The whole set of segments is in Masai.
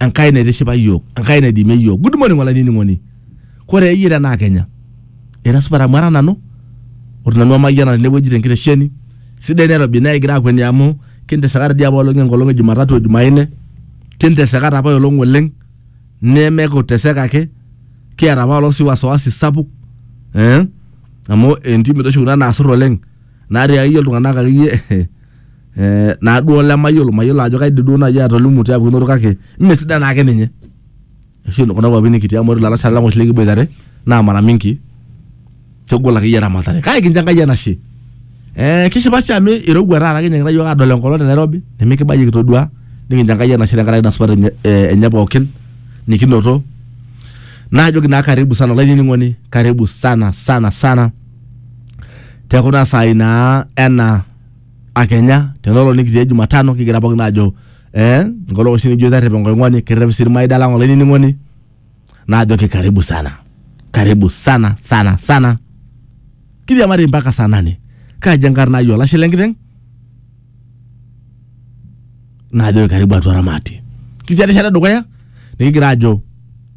Enkai naitishipa iyiook, Enkai naidimie iyiook. Good morning olainining'oni. Kore iyie tenaa Kenya, ira supat amu ara nanu, ore nanu amayiana tenewueji tenkitesheni, sidai Nairobi naa ekigira aakueni amu kinteseka toi dii apa oleng enkolong e Jumatatu o Jumanne, kinteseka taa apa olong oleng, neme kuteseka ake, kiata apa olong sii wasiwasi sapuk ee amu entim doi oshi kuna naasur oleng natii akeyie iltung'anak akeyie eh, naaduo olemayiolo mayiolo ajo kaidim duo naaji atolimu tiatua eunoto kake mme sidai naake ninye oshi kuna kuapi nikitii amu ore ilalashera lang oshi likiboitare naa mara mingi kegol akeyie eramatare kake kincho enkai enashe eh, kishipa sii amu irowua taata kinyiakita yiok adol enkolong te Nairobi nimikibayie kitodua nikincho enkai enashe tenkaraki ina supat enye, eh, enye pookin nikinoto naajoki naa karibu sana olainining'oni karibu sana sana sana tekuna saai naa ena akenya tenolo nikitii e Jumatano kigira pookin aajo eh, enkolong oshi nikijo terrep enkoing'oni kerrep sii irmaida lang olainining'oni naajoki karibu sana karibu sana sana sana kiriamari mpaka saa nane kaji enkarna ai olashe lenkiteng naajoki karibu atua ramati kitii erishata edukuya nikigira aajo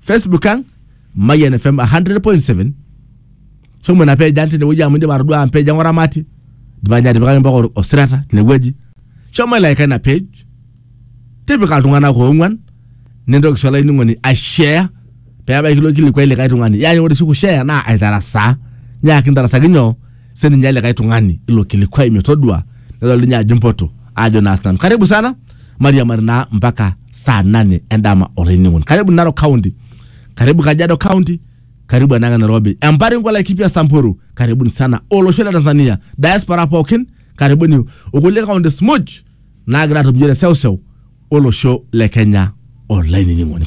facebook ang mayian fm 100.7 shomo ina page ang tinewueji amu indipa atodua ang page ang oramati idipa ninye atipikaki mpaka or- osirata tinewueji shomo ilaika ina page tipika iltung'anak oong'uan nintoki sii olainining'oni aishare peebaiki ilo kilikuai likae tung'ani yaani ore oshi kushare naa aitarasaa nyaaki intarasaki nyoo sininye likae tung'ani ilo kilikwai metodua nedol ninye ajo mpoto ajo naa sinanu karibu sana mariamari naa mpaka saa nane endama olainining'oni karibu narok county karibu kajiado county karibu enanga nairobi empari nkolai kipya samburu karibuni sana olosho le tanzania diaspora pookin karibuni okulie counties muj naagira atum iyiok te seuseu olosho le kenya olainining'oni